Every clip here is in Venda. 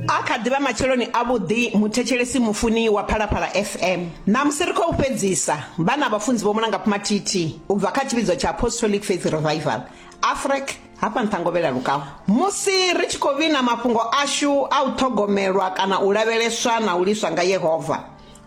A kha ḓi vha matsheloni avhuḓi muthetshelesi mufuni wa Phalaphala FM. Ṋamusi ri khou fhedzisa vha na vhafunzi Vho Mulangapfi Mathithi u bva kha tshivhidzo tsha Apostolic Faith Revival, Afrec, hafha Nṱhangovhela Lukau. Musi ri tshi khou vhina mafhungo ashu a u ṱhogomelwa kana u lavheleswa na u liswa nga Yehova,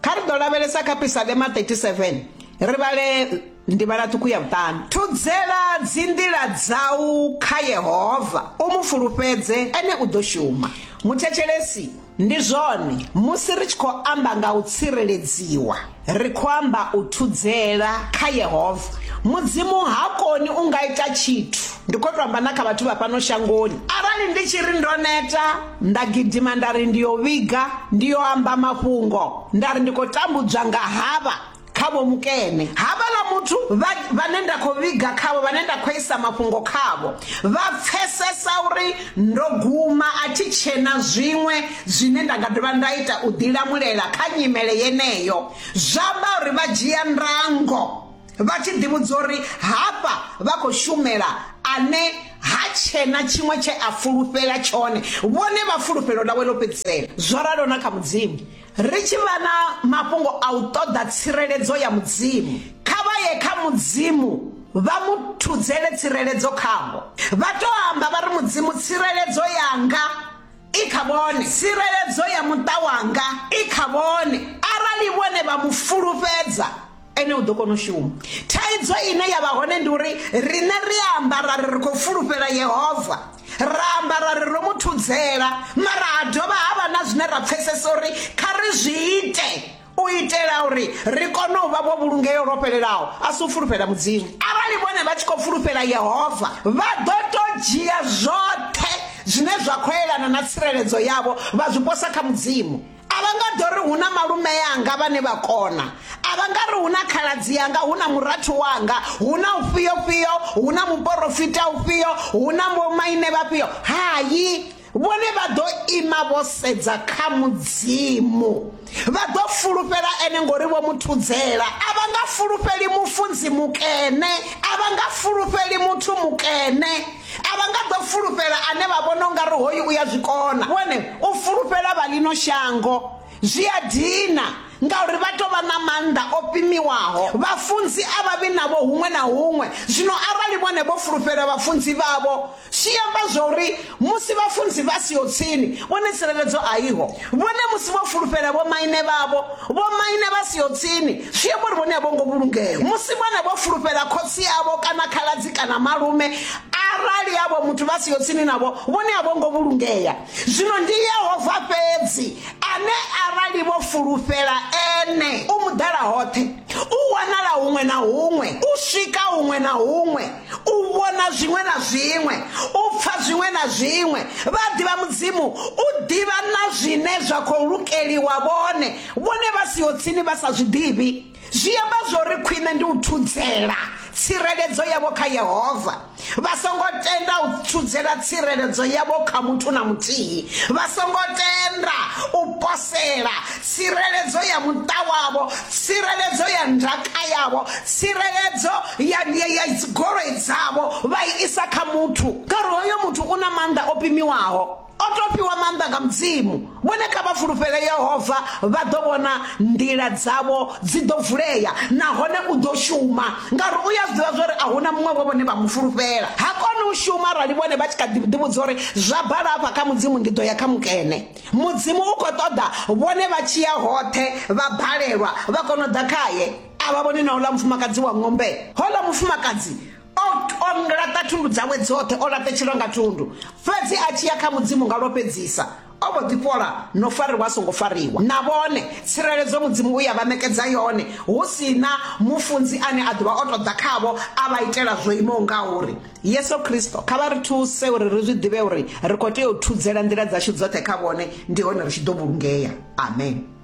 kha ri ḓo lavhelesa kha Pisalema 37, ri vhale Ndivhala ṱhukhu ya vhuṱanu. Thudzela dzinḓila dzau kha Yehova, u mu fulufhedze, ene u ḓo shuma. Muthetshelesi, Ndi zwone, musi ri tshi khou amba nga u tsireledziwa, ri khou amba u thudzela kha Yehova. Mudzimu ha koni u nga ita tshithu. Ndi khou tou amba na kha vhathu vha fhano shangoni. Arali ndi tshi ri ndo neta, nda gidima nda ri ndi yo vhiga, ndi yo amba mafhungo, nda ri ndi khou tambudzwa nga havha, kha Vho Mukene. Havhaḽa muthu vha, vhane nda khou vhiga khavho, vhane nda khou isa mafhungo khavho, vha pfesesa uri ndo guma, a thi tshena zwiṅwe zwine nda nga dovha nda ita u ḓilamulela kha nyimele yeneyo. Zwa vha uri vha dzhia ndango vha tshi ḓivhudza uri hafha vha khou shumela ane ha tshena tshiṅwe tshe a fulufhela tshone, vhone vha fulufhelo ḽawe ḽo fhedzisela. Zwo ralo na kha Mudzimu. Ri tshi vha na mafhungo a u ṱoḓa tsireledzo ya Mudzimu, kha vha ye kha Mudzimu vha mu thudzele tsireledzo khavho. Vha tou amba vha ri, Mudzimu, tsireledzo yanga i kha vhone, tsireledzo ya muṱa wanga i kha vhone. Arali vhone vha mu fulufhedza, ene u ḓo kona u shuma thaidzo ine ya vha hone ndi uri riṋe ri amba ra ri ri khou fulufhela yehova ra amba ra ri ro mu thudzela mara ha dovha ha vha na zwine ra pfesesa uri kha ri zwi ite u itela uri ri kone u vha vho vhulungeo lwo fhelelaho a si u fulufhela mudzimu arali vhone vha tshi khou fulufhela yehova vha ḓo to dzhia zwoṱhe zwine zwa khou elana na tsireledzo yavho vha zwi posa kha mudzimu a vha nga ḓo ri hu na malume yanga vhane vha kona a vha nga ri hu na khaladzi yanga hu na murathu wanga hu na ufhio fhio hu na muporofita ufhio hu na vhomaine vhafhio hayi vhone vha ḓo ima vho sedza kha mudzimu vha ḓo fulufhela ene ngori vho muthudzela a vha nga fulufheli mufunzi mukene a vha nga fulufheli muthu mukene A vha nga ḓo fulufhela ane vha vhona u nga ri hoyu u ya zwi kona. Vhone, u fulufhela vha ḽino shango zwi a dina ngauri vha tou vha na maanḓa o pimiwaho. Vhafunzi a vha vhi navho huṅwe na huṅwe. Zwino arali vhone vho fulufhela vhafunzi vhavho, zwi amba zwauri musi vhafunzi vha siho tsini, vhone tsireledzo a iho. Vhone musi vho fulufhela vhomaine vhavho, vhomaine vha siho tsini, zwi amba uri vhone a vho ngo vhulungea musi vhone vho fulufhela khotsi avho kana khaladzi kana malume arali avho muthu vha siho tsini navho vhone a vho ngo vhulungea zwino ndi yehova fhedzi ane arali vho fulufhela ene u muḓala hoṱhe u wanala huṅwe na huṅwe u swika huṅwe na huṅwe u vhona zwiṅwe na zwiṅwe u pfa zwiṅwe na zwiṅwe vha ḓivha mudzimu u ḓivha na zwine zwa khou lukeliwa vhone vhone vha siho tsini vha sa zwi ḓivhi zwi amba zwori khwine ndi u thudzela tsireledzo yavho kha Yehova vha songo tenda u thudzela tsireledzo yavho kha muthu na muthihi vha songo tenda u posela tsireledzo ya muṱa wavho tsireledzo ya ndaka yavho tsireledzo ya ya dzigoloi dzavho vha i isa kha muthu ngauri hoyo muthu u na maanḓa o pimiwaho O tou fhiwa maanḓa nga Mudzimu. Vhone kha vha fulufhele Yehova, vha ḓo vhona nḓila dzavho dzi ḓo vulea nahone u ḓo shuma, ngauri u ya zwi ḓivha zwori a hu na muṅwe vho vhone vha mu fulufhela. Ha koni u shuma arali vhone vha tshi kha ḓi ḓivhudza uri zwa bala afha kha Mudzimu ndi ḓo ya kha mukene. Mudzimu u khou ṱoḓa vhone vha tshi ya hoṱhe vha balelwa vha kona u ḓa khaye. A vha vhoni na uḽa mufumakadzi wa ng'ombe. Houḽa mufumakadzi o laṱa thundu dzawe dzoṱhe o laṱetshelwa nga thundu fhedzi a tshi ya kha mudzimu nga lwo fhedzisa o vho ḓifhola no fariwa a songo fariwa na vhone tsireledzo mudzimu u ya vha ṋekedza yone hu si na mufunzi ane a ḓovha o tou ḓa khavho a vha itela zwo imaho nga uri yesu kristo kha vha ri thuse uri ri zwi ḓivhe uri ri khou tea u thudzela nḓila dzashu dzoṱhe kha vhone ndi hone ri tshi ḓo vhulungea amen